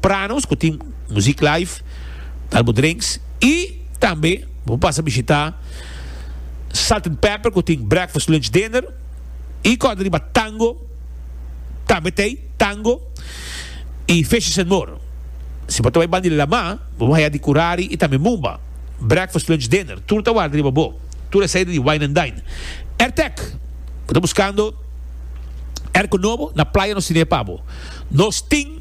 Prano nos ku tin muzik live, tal bo drinks i tambe bo por pasa bishita Salt and Pepper ku tin breakfast, lunch, dinner i kòrda riba tango tambe tei tango i fishes and more. Si bo ta bai banda di Lamá bo por haya di Curari i tambe Mumba, breakfast, lunch, dinner tur ta warda riba bo, tur e saida di wine and dine. Airtec, bo ta buskando airco nobo na playa nos tine e pa bo. Nos tin.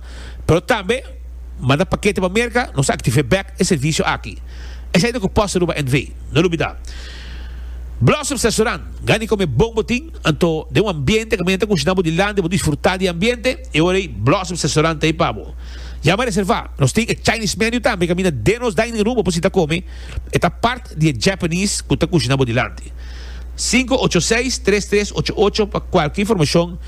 Pero tambe manda pakete pa Merka, nos ta aktiv'é bèk e servisio aki. Esei ta ku pòst Aruba NV. No lubidá. Blossoms Restaurant, gani kome bon bo tin, anto den un ambiente kaminda ta kushina bo di landi bo disfrutá di e ambiente, e ora ei Blossoms Restaurant ta ei pa bo. Yama reservá, nos tin e Chinese menu tambe kaminda den nos dining room bo por sita kome, e ta part di e Japanese ku ta kushina bo di landi. Sinku ocho seis tres tres ocho ocho pa kualke informashon.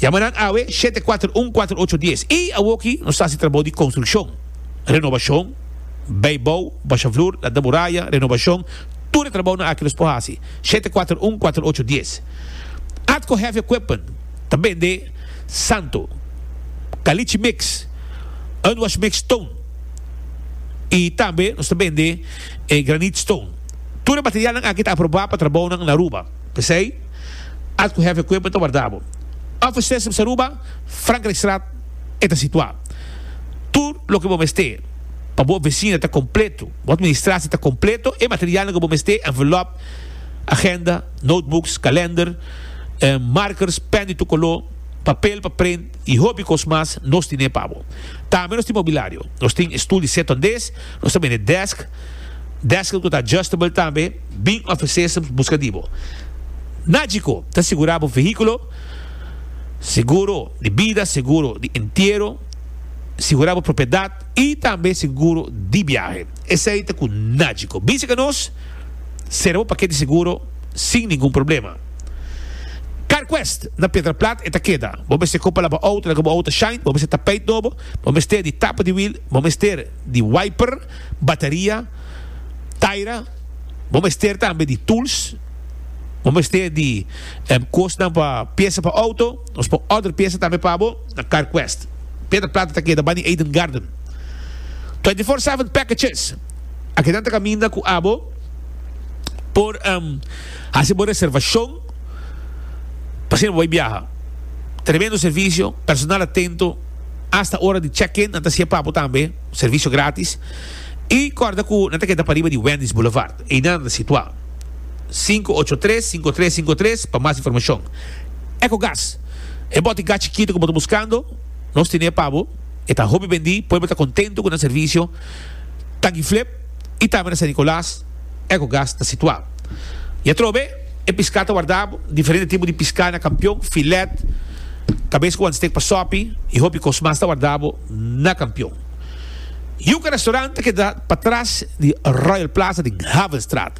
Yama nan awe shete kuater un kuater ocho dies. I awoki nos ta hasi trabou di konstrukshon, renobashon, bai bou, basha flur, lanta muraya, renobashon, tur e trabounan aki nos por hasi, shete kuater un kuater ocho dies. Atco Heavy Equipment ta bende Santo, Caliche Mix, Unwash Mix Stone i tambe nos ta bende e Granite Stone. Tur e materialnan aki ta aproba pa trabounan na Aruba. P'esei, at ku hèf e kuerpo e ta warda bo. Offices Mester Ruba, Frankrijkstraat e ta situá. Tur loke bo mester pa bo ofisina ta kompleto, bo atministrasie ta kompleto, e materialnan ku bo mester, envelop, agenda, notebooks, kalender, markers, pèn di tur koló, papel pa print i hopi kos mas, nos tin'é pa bo. Tambe nos tin mobilario. Nos tin e stul di setondes, nos ta bende desk, desken ku ta adjustable tambe. Bin ofesé su buska di bo. Nagico ta sigurá bo vehíkulo, seguro di bida, seguro di entiero, sigurá bo propiedat i tambe seguro di biahe. Esei ta ku Nagico. Bin serka nos, sera bo paket di seguro sin ningun problema. CarQuest na Piedraplat e ta keda. Bo mester kopa laba outo laga bo outo shine, bo mester tapeit nobo, bo mester di tapa di wiel, bo mester di wiper, Bateria, Taira, bo mester tambe di tools, bo mester di kosnan pa piesa pa outo, nos por order piesa tambe pa bo na CarQuest. Peter Plata ta keda bani Eden Garden. Twenty four seven packages, akedan ta kaminda ku abo por hasi bo reservashon pa siempre bo bai biaha. Tremendo servisio, personal atento, hasta ora di check in nan ta hasié pa bo tambe. servisio gratis y corda cu nan ta keda pariba di Wendy's Boulevard. Einan ta situa. Sinku ocho tres, sinku tres sinku tres pa mas informacion. Ecogas, e boti gas chikito cu bo ta buscando, nos tene pa bo, e ta hopi bendi, pueblo ta contento cu nan servisio, Tanki Flip y tambe na San Nicolas, Ecogas ta situa. Y atrobe, e pisca ta warda diferente tipo di pisca na Campeon, Filet, cabes cu wan steak pa sopi y hopi cos mas ta warda bo. na Kampion. Yuka Restaurant ta keda patras di Royal Plaza den Havenstraat.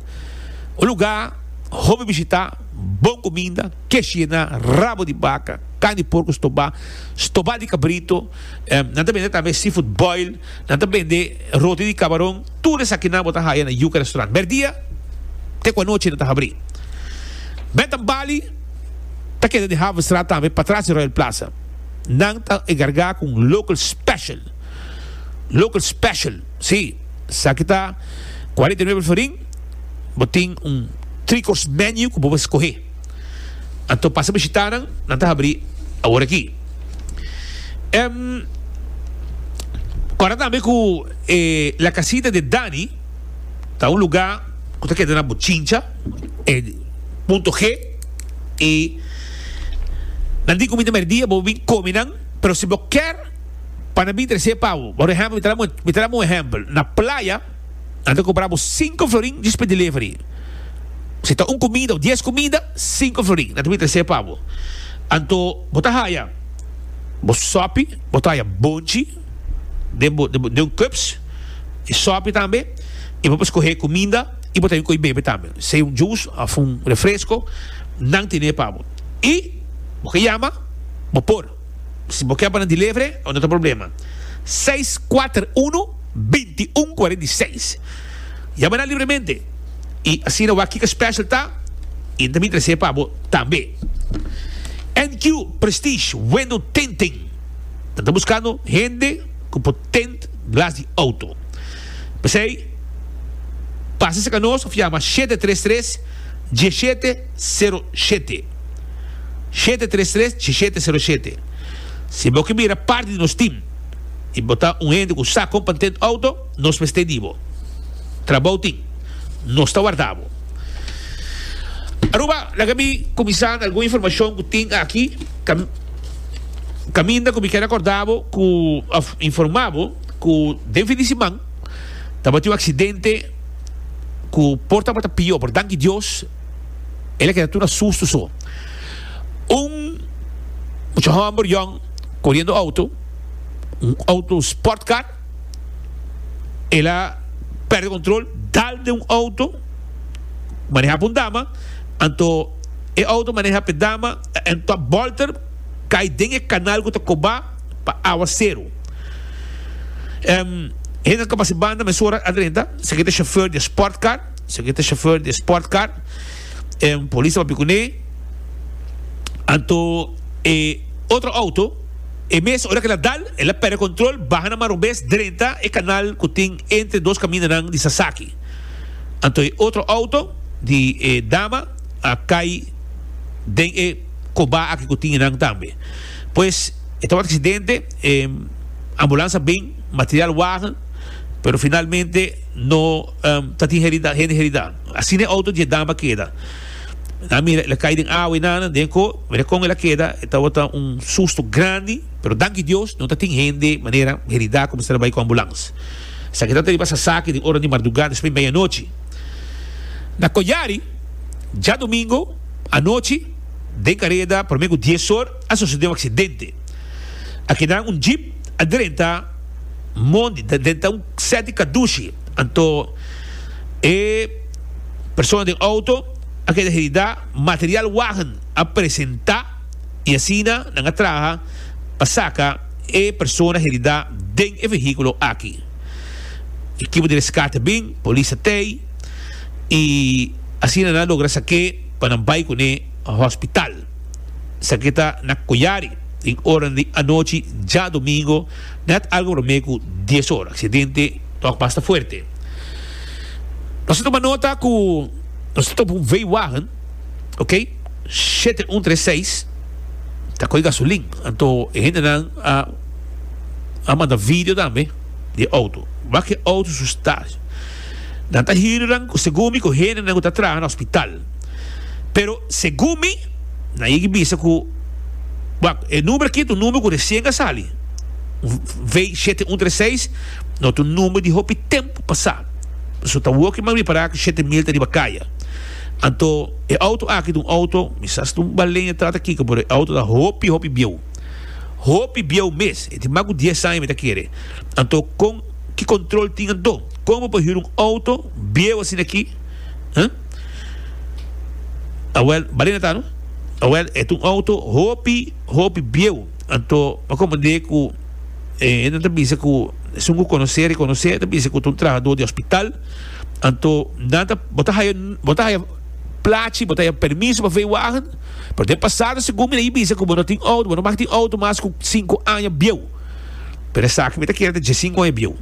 Un lugá hopi bishitá, bon kuminda, kesh yená, rabo di baka, kan di porku stobá, stobá di kabrito, nan ta bende tambe seafood boil, nan ta bende roti di kabaron, tur esakinan bo ta haya na Yuka Restaurant. Merdia te ku anochi nan ta habrí. Bed and Bali ta keda den Havenstraat tambe, patras di Royal Plaza. nan ta enkargá ku un local special, local special, sí, esaki ta kuarenta i nuebe florin, bo tin un three course menu ku bo por skohe. Anto pasa bishitá nan, nan ta habrí awor aki. Em kòrda tambe ku e La Casita de Dani ta un lugá ku ta keda na Bochincha, e punto G. I nan tin comida merdia bo bin comi nan, pero si bo kier pa nan bin trece pa bo, por ehemplo mi ta damo mi ta damo un ehemplo na playa nan ta compra bo cinco florin just pa delivery, si ta un comida of dies comida cinco florin nan ta bin trece pa bo, anto bo ta haya bo sopi bo ta haya bonchi den bo den bo den un cups y sopi tambe y bo por scoge comida. i bo ta bin ko'i bebe tambe, sea un jus of un refresco, nan tene e pa bo. I bo ke yama, bo por. Si bo ke pa nan delivery, a bo no ta problema. Seis kuater unu, binti un kuarenta i seis. Yama nan libremente i asina wak kiko special ta i nan ta bin trese e pa bo tambe. NQ Prestige Window Tinting Nan ta buskando hende ku por tint glas di auto. P'esei, pasa cerca nos of yama shete tres tres dieshete cero shete, shete tres tres dieshete cero shete. Si bo ke mira parti di nos team y bo ta un hende cu sa compa n'tend auto, nos mester e di bo. Trabao tin. Nos ta warda bo. Aruba, laga mi cuminsa na algun informacion cu tin aki, cam-caminda cu mi ker acorda bo cu of informa bo, Ku den fin di siman tabatin un aksidente ku por tabata pió, pero danki Dios el a keda tur na susto so. Un mucha hòmber yòn koriendo outo, un outo sport car, el a pèrdè kontrol dal den un outo manehá pa un dama, anto e outo manehá pa e dama, anto a bòlter kai den e kanal ku ta kobá. pa awasteru. Hende ta basa banda mesora adrenta, esaki ta chauffeur di e sportcar, esaki ta chauffeur di e sportcar, polis ta papia cu ne, anto e otro auto, e mes ora cu el a dal, el a perde control, baha na Marobes drenta e canal cu tin entre dos camindanan di Sasaki, anto e otro auto di e dama a cay den e coba aki cu tin enan tambe. Pues e tabata accidente, e ambulance a bin, material wagen, pero finalmente no ta tin herida, hende herida. Asina e auto dje dama keda. Nan a mira el a cay den awa y nana, den co, mira con el a keda, e tabata un susto grandi, pero danki Dios no ta tin hende manera herida cu mester a bay cu ambulance. Sa keda ta riba sasaki den ora di mardugá despues media anochi. Na Collari, djadomingo anochi, Den kareda prome ku dies or a sosode un aksidente. A keda un jeep a drenta mondi ta drenta un set di kadushi. Anto e persona den outo a keda heridá, material wagen a presentá i asina nan a traha pa saka e persona heridá den e vehíkulo aki. Ekipo di reskate a bin, polis a tei i asina nan a logra sak'é. pa nan bai cu ne hospital. Esaki ta na Coyari den oranan di anochi djadomingo net algo prome cu dies ora. Accidente tok mas ta fuerte. Nos a tuma nota cu nos ta topa un veiwagen, ok, shete un tres seis, ta coge gasolin. Anto e hendenan a manda video tambe di e auto. Wak e auto su sta. Nan ta hirinan ku segun mi ku hendenan ku ta traha na hospital. Pero segun mi nan yegi bisa ku wak e number aki ta un number ku resien a sali. Un V shete un tres seis no ta un number di hopi tempu pasá. Pasobra ta woki mami pará ku shete mil ta riba kaya. Anto e outo aki ta un outo mi sa si ta un Baleno trata kiko pero e outo ta hopi hopi bieu. Hopi bieu mes. E tin mas ku dies aña mi ta kere. Anto kon ki kontrol tin anto? Como pa hura un auto bieu asina aki huh. Awel Balena ta no? Awel e ta un auto hopi hopi bieu anto pa como de cu e hende nan ta bisa cu esun cu conoce reconoce ta bisa cu ta un trahador di hospital anto nan ta bo ta haya bo ta haya plachi bo ta haya permiso pa veiwagen pero den pasado segun mi na bisa cu bo no tin auto bo no mag tin auto mas cu cinco aña bieu. Pero esaki mi ta kere ta djesint con e bieu.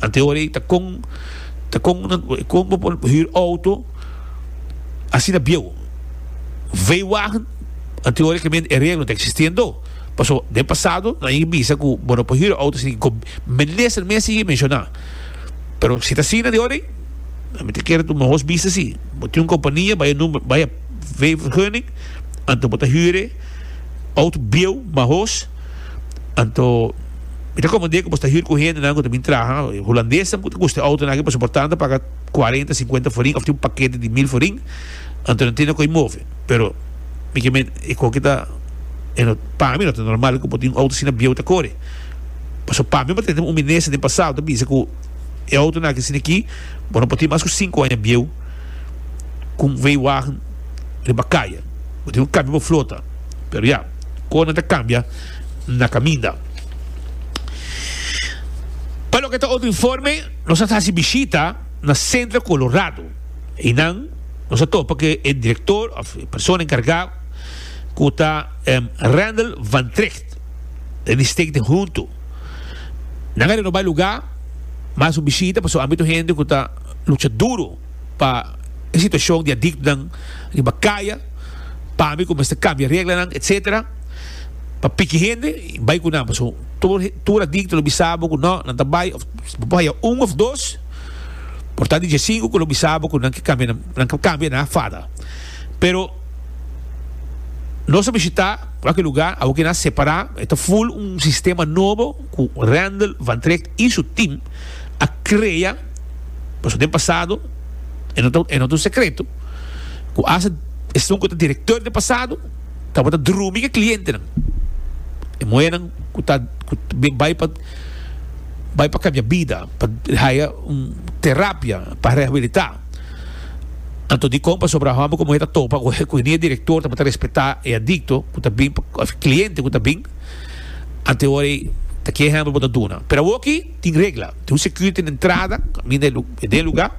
Ante ora ei ta con ta con nan con bo por huur auto asina bieu. Veiwagen ante ora ke men e reglo ta existendo. Paso den pasado nan a yega bisa ku bo no por huur auto sin ku minister mes a yega menshona. Pero si ta asina di ora ei mi ta kere ta un mohos bisa si bo tin un kompania bai e number bai e veivergunning anto bo ta huur e auto bieu, mahos. Anto mi ta komprendé ku boso ta hür ku hendenan ku ta bin traha. Hulandesnan ku ta kuste outonan aki pasobra por tantu paga kuarenta, sinkuenta forin òf tin un pakete di mil forin, anto nan tende ku ei move. Pero mi ke mente e kon ke ta pa mi no ta normal ku bo tin un outo asina bieu ta kore. Pasobra pa mi bo ta tende un minister den pasado ku ta bisa ku e outonan aki asina aki bo no por tin mas ku sinku aña bieu ku un veiwagen riba kaya. Bo tin ku kambia bo flota, pero ya. Kona ta kambia na kaminda. Pa loke ta otro informe, nos a hasi bishita na Centro Colorado. Einan nos a topa ku e direktor òf e persona enkargá ku ta Randall Van Tricht den di State den huntu. Nan a renobá e lugá, mas un bishita pasobra ambia tur hende ku ta lucha duro. pa e situacion di adictonan riba caya, pami cu mester cambia reglanan etc. Pa piki hende bay cu nan pasobra tur tur adicto lo bisa bo cu no nan ta bay of bo por haya un of dos por ta di djasinku cu lo bisa bo cu nan ke cambia nan ke cambia nan a fada pero nos a bishita cualkier lugar awo cu nan a separa e ta full un sistema nobo cu Randel Van Trecht y su team a crea. Pasobra den pasado e no ta e no ta un sekreto ku as esun ku ta direktor den pasado tabata drumi ku e klientenan. E muhernan ku ta ku bin bai pa bai pa kambia bida, pa haya un terapia, pa rehabilitá. Anto dikon? Pasobra hòmber ku muher ta topa ku ku hini e direktor tabata respetá e adikto ku ta bin òf e kliente ku ta bin ante ora ei ta ke ehèmpel bo ta duna. Pero awor aki. Tin regla, tin un security na entrada kaminda e lugar, den e lugar.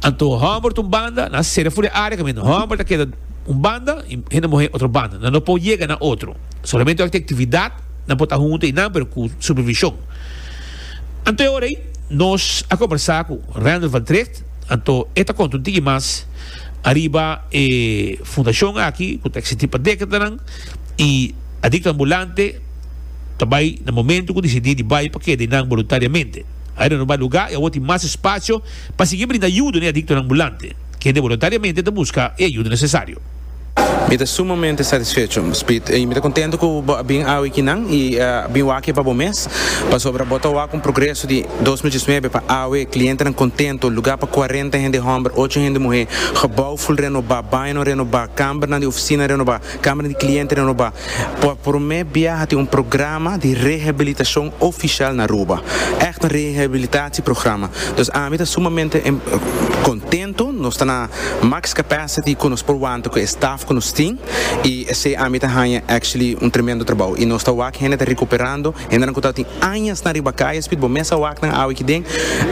Anto homber ta un banda, nan a sera for di e area kaminda homber ta keda un banda y hende muher otro banda. Nan no por yega na otro. Solamente ora cu tin actividad nan por ta hunto y nan, pero cu supervision. Anto e ora ey nos a conversa cu Randall van Tricht, anto e ta conta un tiki mas ariba e fundacion aki cu ta existi pa decadanan y a dicta ambulante. Ta bai na momento cu disidí di bai pa keda einan boluntariamente. Ai renoba luga y awor tin mas espacio pa sigui brinda yudo na e adictonan ambulante. Kende boluntariamente ta busca e ayuda necesario. Mi ta sumamente satisfecho, Speed, y mi ta contento cu bo a bin awe kinan y a bin wak e pa bo mes, pasobra bo ta wak un progreso di dos mil diecinuebe pa awe, clientenan contento, luga pa cuarenta hende homber, ocho hende muhe, gebouw full renoba, bañonan renoba, cambernan di oficina renoba. Kamera di Kliente di Aruba pa promé bia a tin un programa di rehabilitashon ofishal na Aruba. Ègt un rehabilitatie programa. Dus ami ta sumamente kontentu. Nos ta na max capacity ku nos por wanta ku e staf ku nos tin i esei ami ta haña actually un tremendo trabou. I nos ta wak hende ta rekuperando, hendenan ku tabata añasnan riba kaya spit, bo mes a wak nan awe kinden.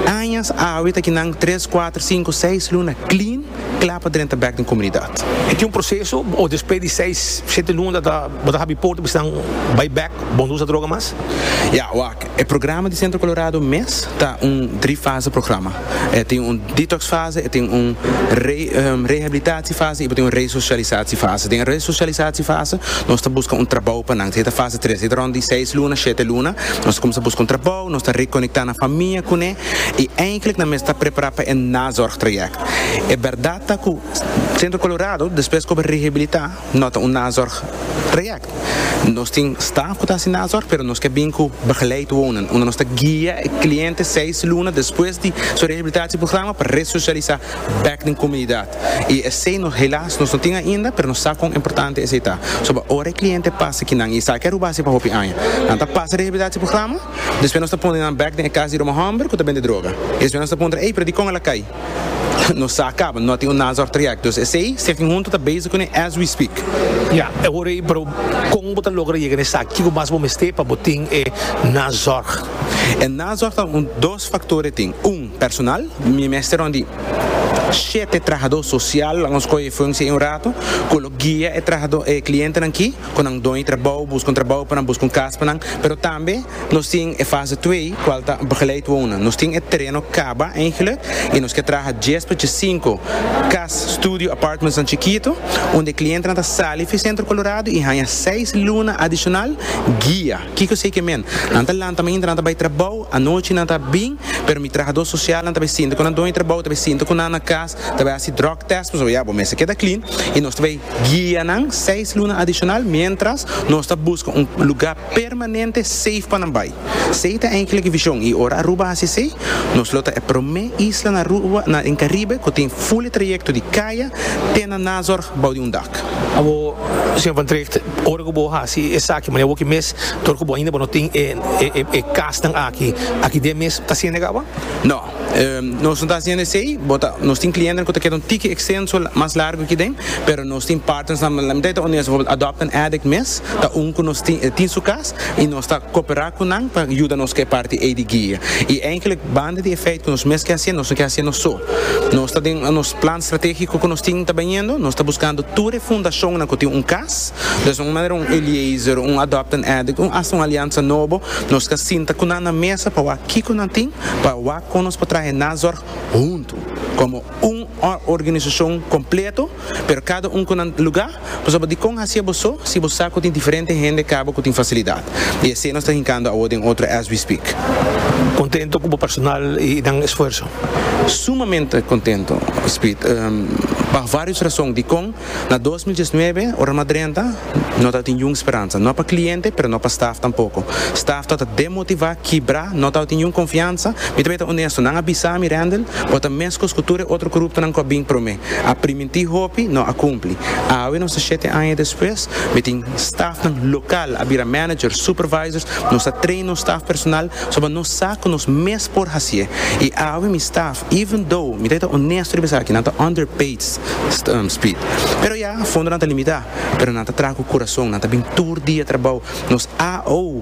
Añas awe ta kinan tres, kuater, sinku, seis luna clean. kla pa drenta bek den komunidat. E tin un proseso o despues di seis, shete luna ta ta bo ta habri porta bisnan bai bek, bon usa droga mas? Ya, wak. E programa di Centro Colorado mes ta un dri fase programa. E tin un detox fase, e tin un re rehabilitatie fase i bo tin un resocialisatie fase. Den e resocialisatie fase nos ta buska un trabou pa nan. Esei ta fase tres. Esei ta rond di seis luna, shete luna. Nos ta kuminsá buska un trabou, nos ta rekonekta nan famia kuné i eindelijk nan mester ta prepará pa e nazorg trayèkt. E bèrdat ta ku Centro Colorado, despues ku bo rehabilitá, no ta un nazorg project. Nos tin staf ku ta hasi nazorg, pero nos ke bin ku begeleid wonen, unda nos ta guia e kliente seis luna despues di su rehabilitatieprograma pa resosialisá bèk den komunidat. I esei nos helas nos no tin ainda, pero nos sa kon importante esei ta. Soba ora e kliente pasa kinan i e sa ke Aruba a hasi pa hopi aña, nan ta pasa rehabilitatieprograma. Despues nos ta pone nan bek den e cas di Roma homber cu ta bende droga. Y despues nos ta puntra, Ey, pero di con el a cay? Nos sa caba, no a tin un Nazor Traject. Dus esey, Stichting Hunto ta bezig cune as we speak. Ya, e hora ey, pero con bo ta logra yega na esaki? Kico mas bo mester pa bo tin e Nazorg? E Nazorg ta un dos factor e tin. Un, personal, mi mester un di shete trahador social, laga nos coge e functie ey un rato, cu lo guia e trahador, e clientenan ki. cu nan dony trabou, busca un trabou pa nan, busca un cas pa nan, pero tambe nos tin e fase twee cual ta begeleid wonen. Nos tin e tereno caba eigenlijk y nos ke traha dies pa dje cinco cas, studio apartmentsnan chikito unda e clientenan ta sali fi Centro Colorado y hanja seis luna adicional guia. Kico esey ke men? Nan ta lanta mainta, nan ta bay trabou anochi, nan ta bin, pero mi trahador socialnan ta bay sinta cu nan dony trabou, ta bay sinta cu nan na cas, ta bay haci drug test nos ta bay ya bo mester keda clean y nos ta bay guia nan seis luna adicional mientras nos ta busca un lugar permanente safe pa nan bay esey ta enkele vision y ora Aruba haci esey nos lo ta e prome isla na Aruba na den Caribe cu tin fuli trayecto di Caya te na Nazorg bou di un dak. Abo Señor Van Tricht ora cu bo haci esaki mane awor aki mes tur cu bo ainda bo no tin e casnan aki aki den mes ta sienega awa? No. Nos no ta haciendo esey, bo ta, nos tin clientenan cu ta keda un tiki extenso, mas largo aki den, pero nos tin partnersnan cu la miday ta honesto, bijvoorbeeld Adopt an Addict mes ta un cu nos tin, e tin su cas y nos ta coopera cu nan pa yuda nos cu e parti ey di guia. Y eigenlijk banda di e feit cu nos mes ke haciendo, nos no ke haciendo so. Nos ta den nos plan strategico cu nos tin ta baniendo, nos ta buscando tur e fundacionnan cu tin un cas, ta esnan un manera un Eliezer, un Adopt an Addict, un hasta un alianza nobo, nos ta sinta cu nan na mesa pa wak kico nan tin, pa wak kon nos por trahe nazorg huntu komo un organisashon kompleto pero kada un ku nan lugá pasobra dikon hasié bo so si bo sa ku tin diferente hende kaba ku tin fasilidat i esei nos ta hinkando awo den otro as we speak. Kontento ku bo personal i nan esfuerso. Sumamente kontento, Speed, pa vários rason. Dikon? Na dos mil diesnuebe, ora nan a drenta, No ta tin niun speransa, no pa kliente, pero no pa staf tampoko. Staf ta ta demotivá, kibrá, no ta tin niun konfiansa. Mi ta bai ta onesto, nan a bisa mi, Randel, bo ta meskos ku tur e otro kuruptonan ku a bin promé. A primintí hopi, no a kumpli. Awe nos ta shete aña despues, mi tin stafnan lokal, a bira managers, supervisors, nos a train nos staf personal, soba nos sa ku nos mes por hasié. I awe mi staf, even though, mi ta bai ta onesto riba esaki, nan ta underpaid, speed. Pero ya, fondonan ta limitá. pero nan ta traha ku kurason, nan ta bin tur dia trabou. Nos AO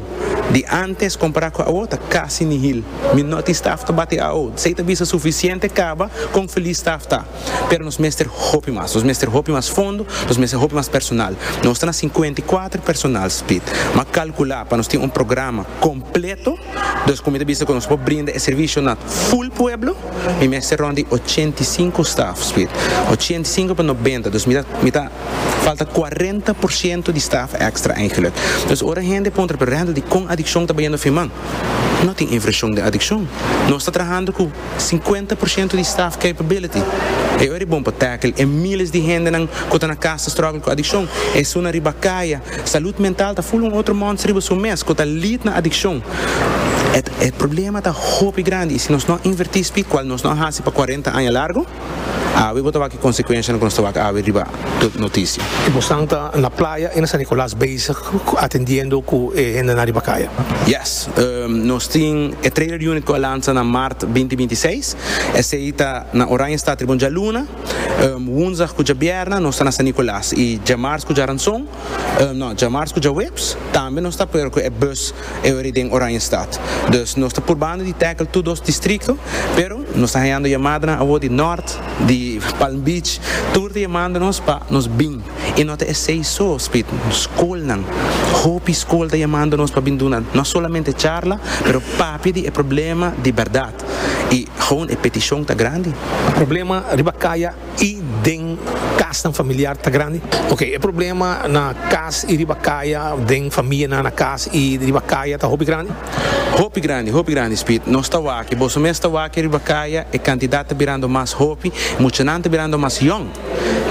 di antes kompará ku awo ta kasi nihil. Mi no tin staf ta bati AO, si ey ta bisa sufisiente kaba kon felis staf ta. Pero nos mester hopi mas, nos mester hopi mas fondo, nos mester hopi mas personal. Nos ta na sinkuenta i kuater personal split. M'a kalkulá pa nos tin un programa kompleto, dus ku mi ta bisa ku nos por brinda e servisio na ful pueblo, mi mester rond di ochenta i sinku staf split. Ochenta i sinku pa nobenta, dus mi ta mi ta. Falta cuarenta por ciento di staf extra eigenlijk. Dus ora hende puntra pero Randall di con adiccion ta bayendo fin man? No tin infraccion den adiccion. Nos ta trahando cu cincuenta por ciento di staf capability. E ora e bon pa tackle e miles di hendenan cu ta na cas ta struggle cu adiccion, esunnan riba caya. Salud mental ta full un otro monster riba su mes cu ta lead na adiccion. E problema ta hopi grandi y si nos no a inverti spi, cual nos no a haci pa cuarenta aña largo, Awe bo ta wak e konsekuenshanan ku nos ta wak awe riba tur notisia. E bosnan ta na playa i na San Nicolas bezig atendiendo ku e hendenan riba kaya. Yes, nos tin e trailer unit ku a lansa na mart binti binti seis. Esei ta na Oranjestad riba un djaluna. Wunzdag ku djabierna nos ta na San Nicolas i djamars ku djaranson, no, djamars ku djaweps tambe nos ta per ku e bus Eori den Oranjestad. Dus nos ta purbando di tackle tur dos distrikto, pero nos ta hayando yamadonan awor di Nort, di Palm Beach, tur ta yamando nos pa nos bin. I no ta esei so, Speed, skolnan, hopi skol ta yamando nos pa bin duna no solamente charla, pero papia di e problema di berdad. I aun e petishon ta grandi. Problema riba kaya. y den casnan familiar ta grandi. Ok e problema na cas y riba caya den famia nan na cas y riba caya ta hopi grandi? Hopi grandi hopi grandi Speed nos ta waki boso mes ta waki riba caya e cantidad ta birando mas hopi muchanan ta birando mas yong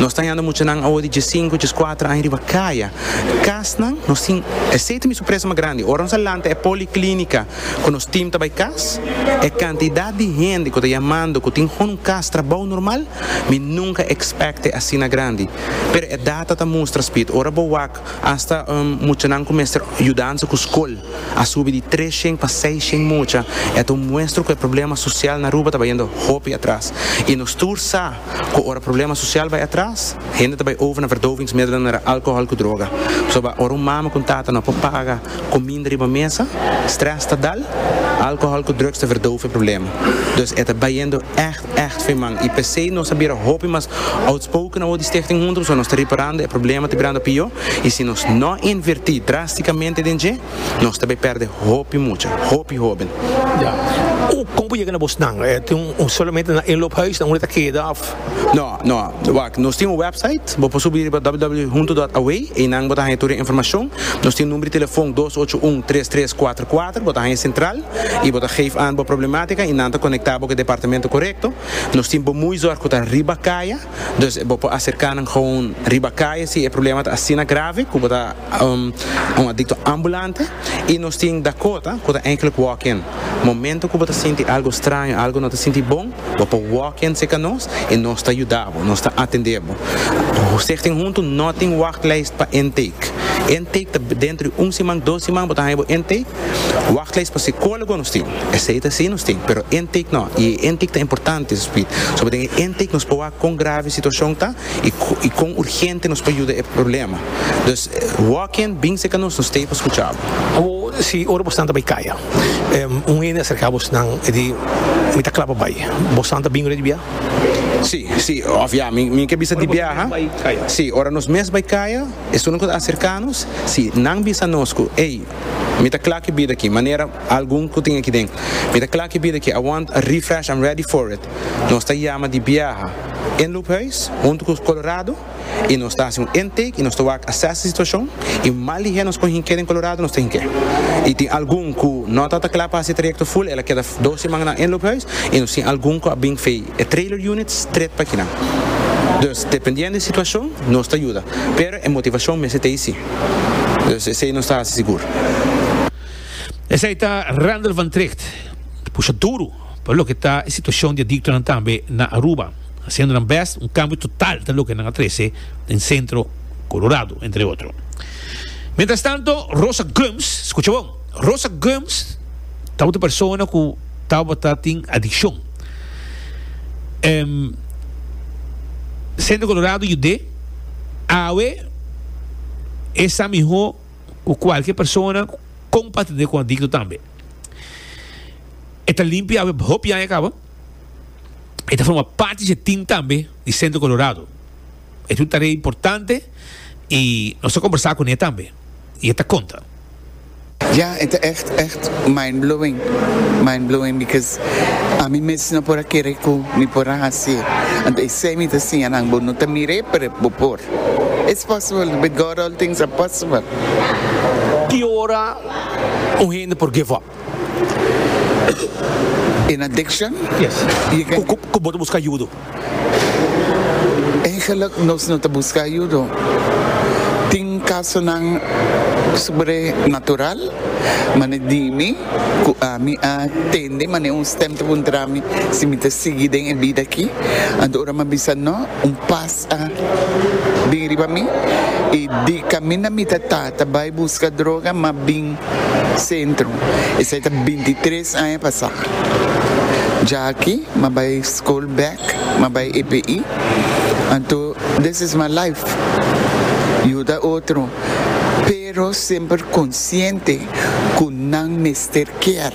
nos ta hallando muchanan awo di dies sinku dies cuatro aña riba caya casnan nos tin esey ta mi sorpresa mas grandi ora nos a lanta e policlinica Cu nos team ta bay cas, e cantidad di hende cu ta yamando cu tin hoon un cas trabao normal, mi nunca expecte asina grandi. Pero e data ta mustra, Speed, ora bo wak, hasta muchanan cu mester yudansa cu scol a subi di tres shen pa seis shen mucha. E ta un muestra cu e problema social na Aruba ta bayendo hopi atras. Y nos tur sa. cu ora problema social bay atras, hende ta bay over na verdovingsmiddelen mera alcohol cu droga. Pasobra ora un mama cu un tata no por paga cominda riba mesa, stress ta dal, alcohol cu drugs ta verdove e problema. Dus e ta bayendo echt, echt fin man y p'esey nos a bira hopi mas outspoken awor di Stichting Hunter, pasobra nos ta riparando e problema ta birando pior y si nos no inverti drasticamente den dje, nos ta bay perde hopi mucha, hopi hoben. Ya. Cu, como bo yega na bosnan? Eh, tin un, solamente na inloophuisnan unda ta keda of? No, no. Wak, nos tin un website, bo por subi riba www.hunto.away, eynan bo ta haya tur e informacion. Nos tin number di telefon dos ocho un tres tres cuatro cuatro, bo ta haya central y bo ta geef aan bo problematica y nan ta conecta bo cu e departamento corecto. Nos tin bo muy zorg cu ta riba caya. Dus bo por acerca nan gewoon riba caye si e problema ta asina grave cu bo ta un adicto ambulante y nos tin Dakota cu ta enkele walk-in. Momento cu bo ta sinti algo straño, algo no ta sinti bon, bo por walk-in seca nos y nos ta yuda bo, nos ta atende bo. Stichting Hunto no tin wachtlijst pa intake. Intake ta dentro di un siman, dos siman bo ta haya bo intake. Wachtlijst pa psicólogo nos tin. Esei ta si nos tin, pero intake no, i e intake ta importante Sweet, soba den e intake nos por wak kon grave e situacion ta i kon urgente nos por yuda e problema. Dus, walk in, binse ca nos, nos ta ei pa scucha bo. Awo, si ora bosnan ta bai caya, un hende a cerca bosnan e di, Mi ta cla pa bai, bosnan ta bin ora di bia? Si, si, of ya, mi mi ke bisa di bia, ha? Si, ora nos mes bai caya, esun a cerca nos, si nan bisa nos cu, Ey, Mi ta kla ku e bida aki, manera algun ku tin aki den, mi ta kla ku e bida aki, I want a refresh, I'm ready for it. Nos ta yama di biaha en Loophuis huntu ku Colorado i nos ta hasi un intake i nos ta wak assess e situashon i mal di hel nos kon hink'é den Colorado nos ta hink'é. I tin algun ku no ta ta kla pa hasi e trayekto ful, el a keda dos simannan en Loophuis i nos tin algun ku a bin fei. E trailer units tret pa kinan. Dus, dependiendo e situacion, nos ta yuda. Pero e motivacion mester ta eysi. Dus, esey nos ta haci sigur. Esey ta Randall van Tricht, ta pusha duru pa loke ta e situacion di adictonan tambe na Aruba, haciendo nan best un cambio total ta loke nan a trece den Centro Colorado, entre otro. Mientrastanto, Rosa Gomes, scucha bon, Rosa Gomes tabata persona cu tabata tin adiccion. Em, Centro Colorado yud'é awe e sa mihó ku kualke persona kon patid'é ku adikto tambe. E ta limpia awe hopi aña kaba. E ta forma parti di e tim tambe di Centro Colorado. E ta un tarea importante i nos ta kombersá kuné tambe i e ta konta. Ya, e ta echt, echt mind-blowing, mind-blowing because ami mes no por a kere ku mi por a hasié. Anto esei mi ta siña nan bo, no ta mir'é pero bo por. It's possible, with God all things are possible. Ki ora un hende por give up? In addiction? Yes. Ku bo ta buska yudo? Eigenlik nos no ta buska ayudo. Tin kasonan sobrenatural, mane dimi ku ami a tende mane un stèm ta puntra mi si mi ta sigui den e bida aki. Anto ora mi a bisa no, un pas a bin riba mi i di kaminda mi ta ta ta bai buska droga mi a bin. Centro. Esai ta binti tres aña pasá. Dja aki m'a bai skol bèk, m'a bai EPI, anto this is my life, yuda otro, pero semper konsiente ku nan mester kier.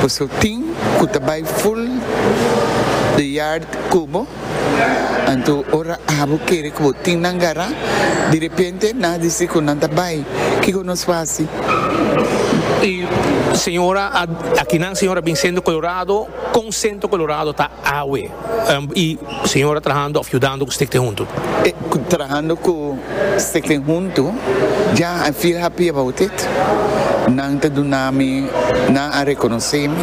Por eso tin ku ta bai full de yard ku bo. Anto ora abo kere ku bo tin nan gará, di repente nan a disi ku nan ta bai, kiko nos fasi? E señora a aki nan señora bin sento kolorado, kon sento kolorado ta awe? E señora trahando òf yudando ku Stichting Huntu? E trahando ku Stichting Huntu, ja I feel happy about it. Nan ta duna mi, nan a rekonosé mi,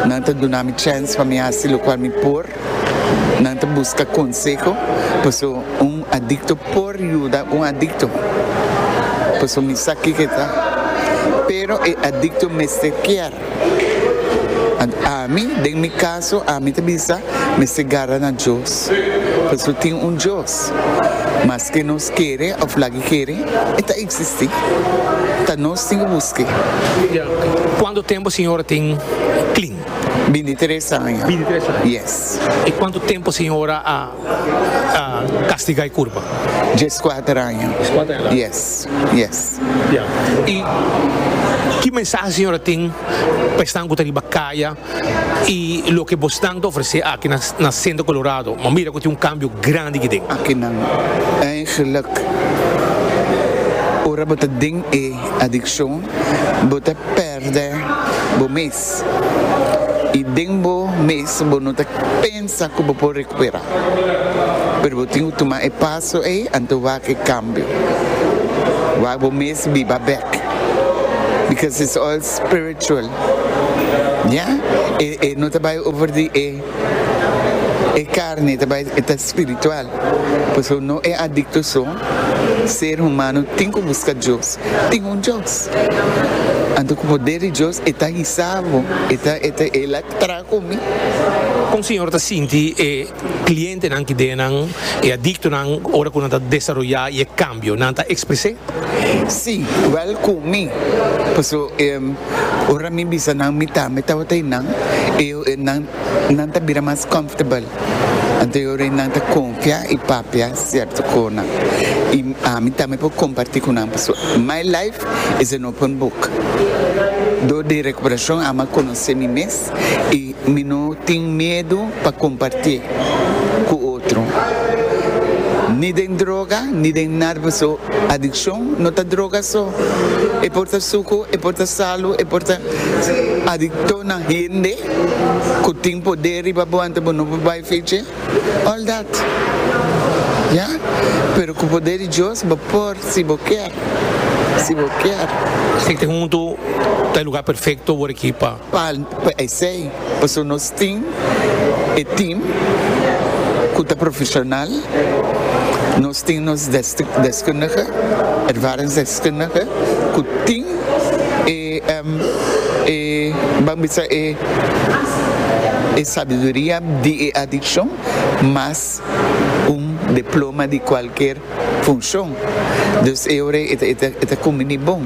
nan ta duna mi chèns pa mi hasi lokual mi por. Nan ta buska konseho paso un adikto por yuda un adikto paso mi sa kiko ta pero e adikto mester kier ami den mi kaso ami ta bisa mester garra na Dios paso tin un Dios maske nos kere of lagi kere e ta eksisti ta nos tin ki buske. Cuanto tempo señora tin clin? Binti tres aña. Binti tres aña? Yes. I kuantu tempu siñora a kastigá e kurpa? Djes kuater aña. Djes kuater aña laga. Yes, yes. Ya. I ki mensahe siñora tin pa esnan ku ta riba kaya i loke bosnan ta ofresé aki na Centro Colorado? Bo mira ku tin un kambio grandi aki den. Akinan eigelijk ora bo ta den e adikshon bo ta. Perde bo mes i den bo mes bo no ta pensa ku bo por rekuperá. Pero bo tin ku tuma e paso ei anto wak e kambio. Wak bo mes biba bèk because it's all spiritual. Ya? E no ta bai over di e. E carne ta bai e ta spiritual, pasobra no e adicto so, ser humano tin cu busca Dios, tin un Dios. Anto cu poder di Dios e ta hisa bo, e ta e ta el a traha cu mi. Con Señor ta sinti e clientenan ki den nan, e adictonan, ora cu nan ta desaroya y e cambio? Nan ta exprese? Si, igual cu mi, pasobra ora mi bisa nan mi tambe tabata y nan, e. Nan ta bira mas comfortable. Anterior e nan ta confia y papia cierto conan. Y ami tambe por comparti cu nan pasobra my life is an open book. Door di recuperacion ami a conoce mi mes y mi no tin miedo pa comparti cu otro. Ni den droga ni den nada pasobra. Adiccion no ta droga so. E por ta sucu, e por ta salu, e por ta adicto na hende cu tin poder riba bo anto bo no por bay fe dje, all that. Ya, pero cu poder di Dios bo por si bo kier, si bo kier. Siti huntu ta e lugar perfecto word aki pa Pa esei, pasobra nos tin e team ku ta profesional, nos tin nos deskundige, ervaringsdeskundige, ku tin e, ban bisa e sabiduria di e adikshon mas un diploma di kualker funshon. Dus e ora ei e ta kuminí bon.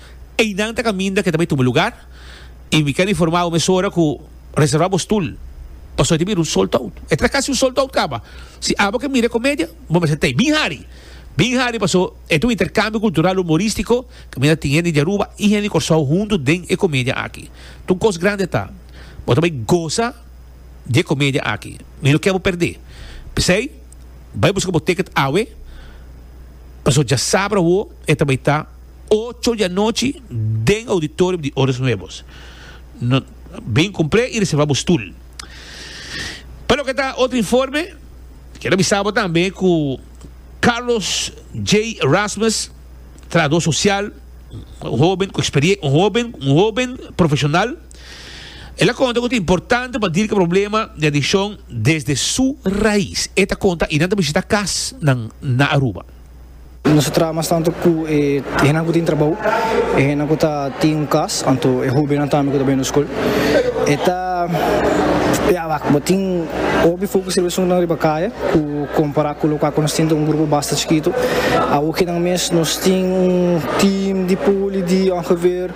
Einan ta kaminda ke ta bay tuma lugar y mi ker informa bo mesora ku reserva bo stul pasobra e ta bira un sold out. E ta casi un sold out caba. Si abo ke mira e comedia bo mester ta ey bin hari, bin hari pasobra e ta un intercambio cultural humoristico kaminda tin hende di Aruba y hende di Corsou hunto den e comedia aki. Ta un cos grande ta. Bo ta bay goza di e comedia aki. Mi no ker bo perde. P'esey bay busca bo ticket awe pasobra dja sabra awo e ta bay ta. Ocho di anochi den auditorium di Oros Nuevos. Bin cumple y reserva bo stoel. Pa loke ta otro informe, quiero avisa bo tambe cu Carlos J. Erasmus, trabajador social, un hoben cu experiencia, un hoben, un hoben profesional, el a conta cu ta importante pa dirca problema di adiccion desde su raiz. E ta conta, y nan ta visita casnan na Aruba. Nos ta traha mas tantu ku e hendenan ku tin trabou, e hendenan ku ta tin un kas, anto e hóbennan tambe ku ta bini skol. E ta bia wak, bo tin hopi fokus riba esuntunan riba kaya ku kompará ku lokal ku nos tin ta un grupo basta chikitu. Awor kinan mes nos tin un tim di poli di ongeveer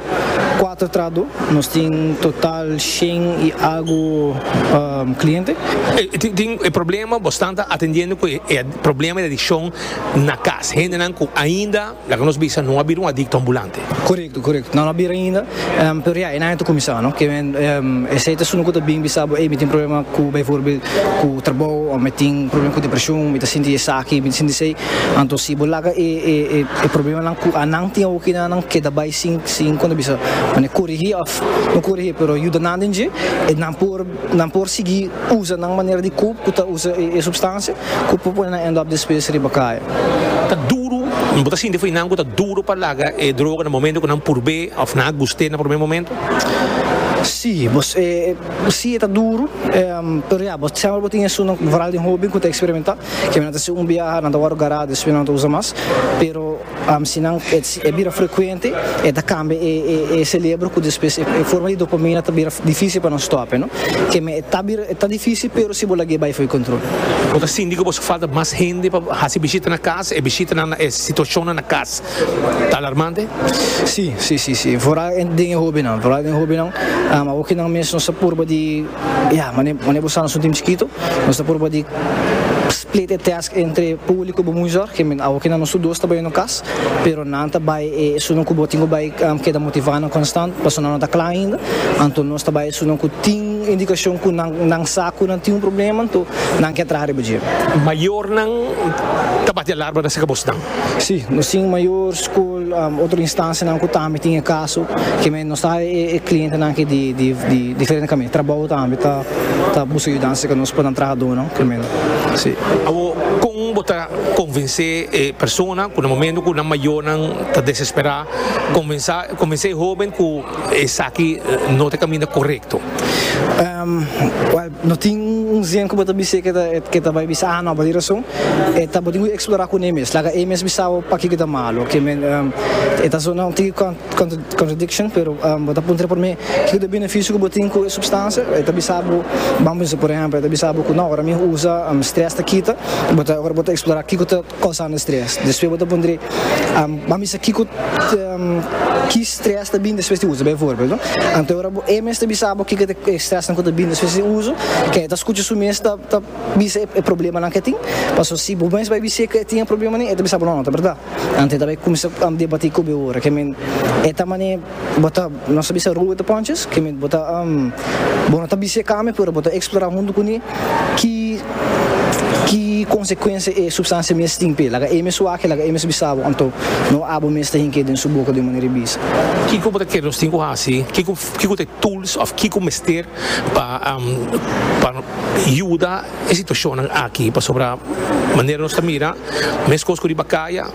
kuater trahadó, nos tin un total shen i algu kliente. Tin e problema, bo stan ta atendiendo ku e Problema di adikshon na kas. Hendenan ku ainda, laga nos bisa, no a bira un adikto ambulante. Korekto, korekto. Nan no a bira ainda, pero ya e aña ta kuminsá, no? Ke men, esei ta esun ku ta bin bisa bo, ey, mi tin problema ku, beivoorbeeld, ku trabou, òf mi tin problema ku depreshon, mi ta sinti esaki, mi ta sinti esei. Anto si bo laga e, e, e problemanan ku anan tin awoki na nan keda bai sin, sin, kon ta bisa, mane korigí òf no korigí, pero yuda nan den dje, nan por. Nan por sigui usa nan manera di kub ku ta usa e supstansia ku por pone nan end-up despues riba kaya. Ta duru, bo ta sinti awinan ku ta duru pa laga e droga na momento ku nan purb'é òf nan a gust'é na promé momento? Sí, bo sí e ta duru, pero ya bo sèmbra bo tin esun veral den hoben ku ta eksperimentá, kèn nan ta hasi un biaha, nan ta wòrdu gará, despues nan no ta usa mas, pero. Si nan e bira frekuente e ta kambia e selebro ku despues e forma di dopamina ta bira difísil pa nan stòp. Keme e ta difísil pero si bo lag'é bai for kontrol. Bo ta sinti ku bo haci falta mas hende pa hasi bishita na kas? E bishitanan na e situashonnan na kas ta alarmante? Sí, sí, sí, sí. Vooral den e hóbennan. Vooral den e hóbennan. Awor ku nan mes nos ta purba di, ya, mane bo sa nos un timp chikito, nos ta purba di split e tèst. Entre publico bo muy zorg, kende awo kende nos tur dos ta bay no cas, pero nan ta bay e esunan cu bo tin cu bay keda motiva nan constant, paso nan no ta cla ainda, anto nos ta bay esunan cu tin indicacion cu nan nan sa cu nan tin un problema, anto nan ke a traha riba dje. Mayornan ta bati alarma na acerca bosnan, Sí, nos tin mayor skol, otro instansianan ku tambe tin e kaso, keme nos ta haña e klientenan aki di diferente kaminan. Trabou tambe ta buska yudansa ku nos pa nan trahadónan, keme nan. Sí. Awor, kon bo ta konvensé e persona ku na momentu ku nan mayornan ta desesperá, konvensá konvensé e hóben ku esaki no ta e kaminda korekto? Wèl. No tin un zen ku bo ta bis'é ke ta bai bisa ahan nòba. Di rason e ta bo tin ku eksplorá kuné mes. Laga e mes bisa bo pakiko ta malu. E ta sona un tiki contradiction, pero bo ta puntra promé kiko ta e benefisio ku bo tin ku e supstansia. E ta bisa bo, bam pensa, por ehèmpel, e ta bisa bo ku nò, ora mi usa strès ta kita. Bo ta, ora bo ta eksplorá kiko ta Causando stress. Despues bo ta puntra, Bo a misa kico ki stress ta bini despues di usa? Bijvoorbeeld, Anto e ora bo e mes ta bisa bo kico ta e stressnan cu ta bini despues di usa, ken e ta scucha su mes ta bisa e problemanan cu e tin? Pasobra si bo mes bai bisa e cu e tin e problemanan, e ta bisa bo no, no ta berdad. Anto e ta bai cuminsa debati cu bo e ora. Ke men, e ta mane. Bo ta nos ta bisa Roberto Ponches ke men bo ta bo no ta bisa e kami pero bo ta eksplorá huntu ku mi ki ki konsekuensia e supstansia mes tin p'e laga e mes wak e laga e mes bisa bo anto no abo mes ta hink'e den su boka den manera di bisa. Kiko bo ta kere nos tin ku hasi? Kiko kiko ta e tools òf kiko mester pa pa yuda e situashonnan aki? Pasobra manera nos ta mira mes kos ku riba kaya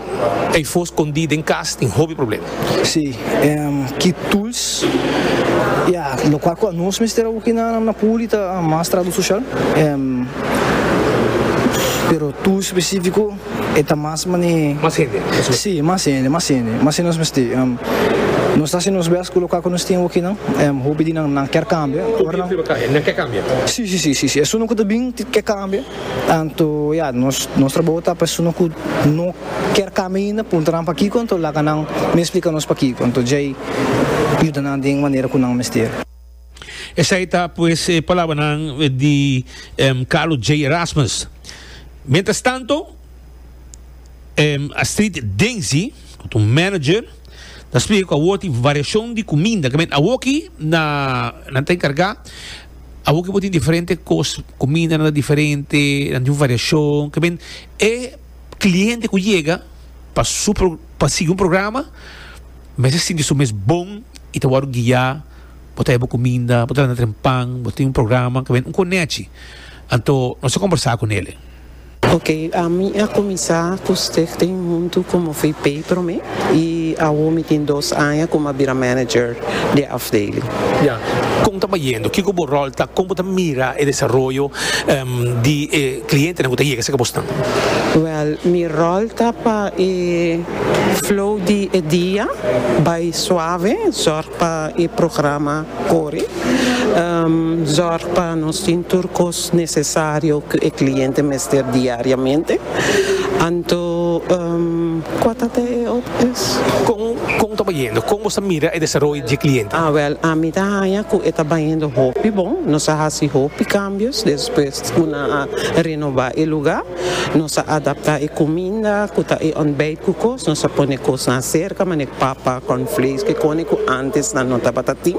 Ey for scondí den cas tin hopi problema. Sí, en ki tools y a lo cual cu a nos mester a hoki na na puli ta mas trato social, en pero tools specifico e ta mas mane. Mas hende nos mester. Sí, mas hende, mas hende, mas hende nos mester, en nos ta haci nos best cu lo cual cu nos tin hoki nan, en hopi di nan nan kier cambia, ora nan. Hopi e prueba cambia, nan kier cambia. Sí, sí, sí, sí, sí, esun nan cu ta bin kier cambia. Tanto ya nos nos trabou ta persona cu no kier cambia ainda puntra nan pakico anto laga nan mi explica nos pakico anto djey yuda nan den manera cu nan mester. Esai ta pues e palabranan di Carlo J. Erasmus. Mientras tanto Astrid Denzi cu ta un manager ta explica cu awor tin variacion di cuminda, caminda awoki na nan ta encarga. Awo ke bo tin diferente kos, kumindanan ta diferente, nan tin variashon, ke men e kliente ku yega pa su pro pa sigui un programa mester sinti su mes bon i ta wòrdu guiá, bo ta heba kuminda, bo ta dana trempan, bo tin un programa, ku men un konechi, anto nos ta kombersá ku nele. Ok ami a kuminsá ku Stig tin huntu ku mi fui pei promé i awo mi tin dos aña ku mi a bira manager di e afdeling. Ya. Kon ta bayendo? Kiko bo ròl ta? Kon bo ta mira e desaroyo di e klientenan ku ta yega serka bosnan? Wèl, mi ròl ta pa e flow di e dia bai suave, zòrg pa e programa kore, zòrg pa nos tin tur kos. necesario cu e cliente mester diariamente, anto cua ta te e otro es? Con con ta bayendo? Con nos ta mira e desaroyo dje cliente? Ah wel ami ta haña cu e ta bayendo hopi bon, nos a haci hopi cambios despues cu nan a renoba e lugar. Nos a adaptá e kuminda ku ta e òntbèit ku kos, nos a pone kosnan aserka manera papa, kòrnflakes, kikone ku ántes nan no tabata tin.